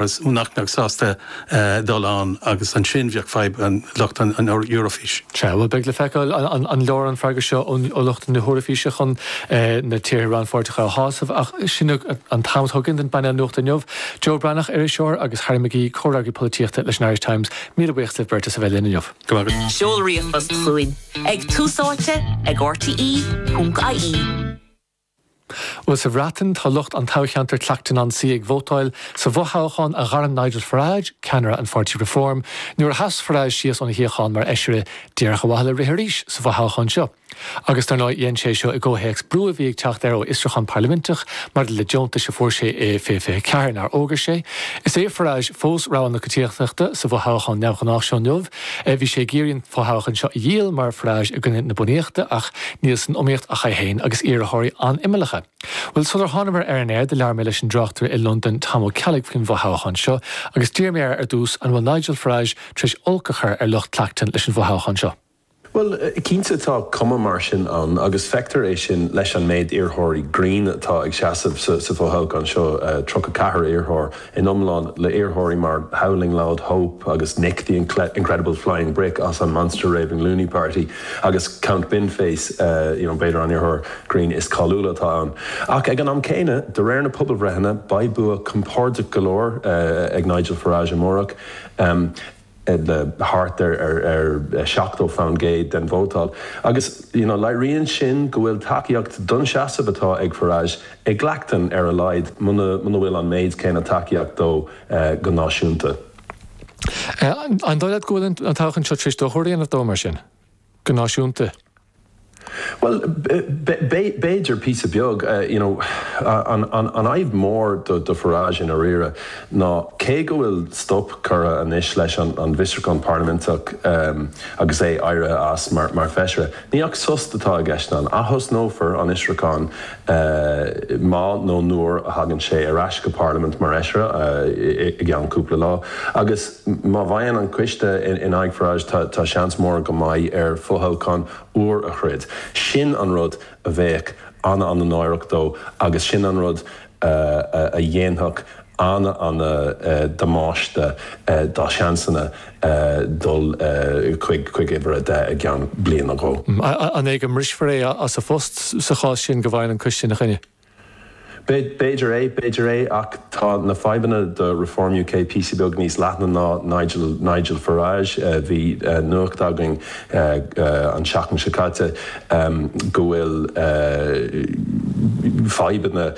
Is mó duine nach mbeadh sásta dul ann agus ansin bheadh fadhb ag lucht an Eoraifís. Sea, bhuel beidh le feiceáil an leor an freagra seo ó lucht na hEoraifíse chun na tíortha rannpháirteacha a shásamh ach sin an t-am atá againn don bpainéal nuachta inniu, Joe Breathnach, iriseoir, agus Harry McGee, comhfhreagraí polaitíochta leis an Irish Times. Míle buíochas libh beirt as a bheith linn inniu. Go maith. Seol ríomhphost chugainn ag túsáite ag rte.ie. Bhuel, sa Bhreatain, tá lucht an toghcheantair Clacton-on-Sea ag vótáil sa bhfothoghchán a ghairm Nigel Farage, ceannaire an pháirtí Reform, nuair a sheas Farage síos óna shuíochán mar fheisire, díreach ar mhaithe le rith arís sa bhfothoghchán seo. Agus, dar ndóigh, dhein sé seo i gcomhthéacs brú a bhí ag teacht air ó fhiosrúchán parlaiminteach maidir le deontais a fuair sé i 2024 nár fhógair sé. Is é Farage fós rogha na coitiantachta sa bhfothoghchán neamhghnách seo inniu, Bhí sé ag iarraidh an fothoghchán seo a dhíol mar fhreas i gcoinne na bunaíochta ach níl san iomaíocht ach é féin agus iarrthóirí an-imeallacha. Bhuel, sular thánamar ar an aer, do labhair mé leis an dtráchtaire i Londain Tom Ó Ceallaigh faoin bhfothoghchán seo agus d'iarr mé air ar dtús an bhfuil Nigel Farage tar éis olc a chur ar lucht Clacton leis an bhfothoghchán seo. Bhuel, cinnte tá cuma mar sin ann agus feictear é sin leis an méid iarrthóirí grinn atá ag seasamh sa fho-thoghchán seo, tríocha ceathair iarrthóir in iomlán, le iarrthóirí mar Howling Laud Hope agus Nick the Incredible Flying Brick as an Monster Raving Loony Party agus Count Binface, you know, b'fhéidir an iarrthóir grinn is cáiliúla atá ann. Ach ag an am céanna, de réir na pobalbhreitheanna, beidh bua compordach go leor ag Nigel Farage amárach. le thart ar 70% den vóta, agus leiríonn sin go bhfuil tacaíocht don seasamh atá ag Farage i gClacton ar a laghad, muna bhfuil an méid céanna tacaíocht dó go náisiúnta. An dóigh leat go bhfuil an toghchán seo tar éis dochar a dhéanamh dó mar sin? go náisiúnta? Bhuel, b'fhéidir, píosa beag, you know. An fhadhb mhór do Farage, i ndáiríre, ná cé go bhfuil stop curtha anois leis an bhfiosrúchán parlaiminteach agus é éirithe as mar Feisire, níl ach sos atá i gceist ann. Atosnófar an fhiosrúchán má nó nuair a thagann sé ar ais go Parlaimint mar Fheisire i gceann cúpla lá agus, Má bhfaigheann an coiste in aghaidh Farage tá seans mór go mbeidh air fothoghchán úr a throid. Sin an rud a bheadh an-an-náireach dó agus sin an rud a dhéanfadh an-an-damáiste dá sheansanna dul chuig uimhir a deich i gceann bliain nó dhó. An é go mbrisfear é as a phost sa chás sin go bhfaigheann an coiste ina choinne? B'fhéidir é, b'fhéidir é, ach tá na fadhbanna do Reform UK píosa beag níos leithne ná Nigel, Nigel Farage. Bhí nuacht againn an seachtain seo caite go bhfuil fadhbanna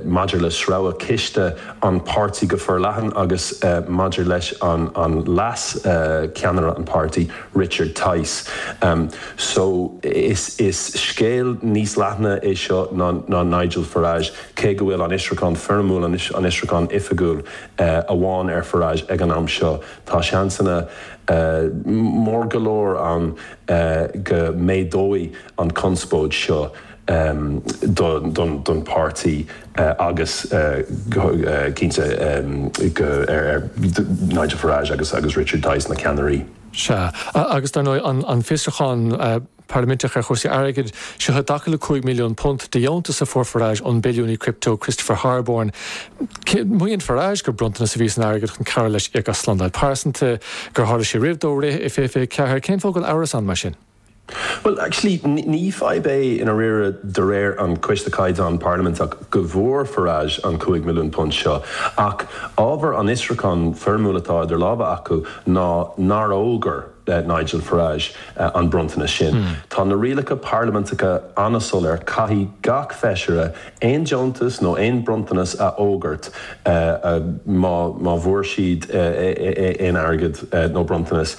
maidir le sreabhadh ciste an páirtí go forleathan agus maidir leis an leas-cheannaire an páirtí, Richard Tice, So, is is scéal níos leithne é seo ná ná Nigel Farage, cé go bhfuil an fhiosrúchán foirmiúil, an an fhiosrúchán oifigiúil, amháin ar Farage ag an am seo, tá seansanna mór go leor ann go méadóidh an conspóid seo. don pháirtí agus cinnte do Nigel Farage agus Richard Tice, na ceannairí. Sea, agus dar ndóigh an fiosrúchán parlaiminteach ar chúrsaí airgid, seo i dtaca le £5 milliún de dheontas a fuair Farage ón billiúnaí crypto Christopher Harborne. Maíonn Farage gur bronntanas a bhí san airgead chun cabhrú leis íoc as slándáil phearsanta, gur tharla sé roimh dó rith i 2024. Cén fáth a bhfuil amhras ann mar sin? Bhuel, actually, ní fadhb é i ndáiríre de réir an Coiste Caighdeán Parlaiminteach go bhfuair Farage an cúig milliún punt seo, ach ábhar an fhiosrúchán foirmiúil atá idir lámha acu ná nár fhógair Nigel Farage an bronntanas sin. Tá na rialacha parlaiminteacha an-soiléir, caithfidh gach feisire aon deontas nó aon bronntanas a fhógairt má bhfuair siad aon airgead nó bronntanas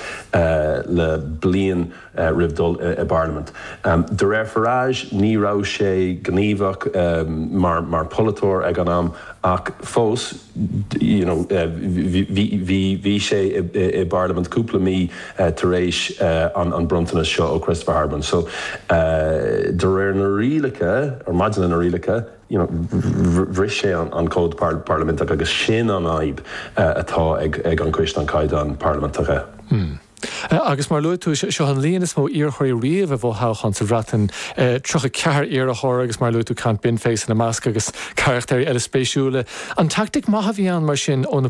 le bliain roimh dhul i bparlaimint. De réir Farage, ní raibh sé gníomhach mar pholaiteoir ag an am ach fós, Bhí sé i bParlaimint cúpla mí tar éis an bronntanas seo ó Christopher Harborne. So de réir na rialacha, or maidir leis na rialacha, bhris sé an Cód Parlaiminteach agus sin an fhadhb atá ag an gCoiste an Caighdeáin Parlaiminteacha. Agus mar a luaigh tú, seo an líon is mó iarrthóirí riamh i bhfothoghchán sa Bhreatain, 34 iarrthóir agus mar a luaigh tú Count Binface ina measc agus carachtair eile spéisiúla. An teaictic mhaith a bhí ann mar sin ó na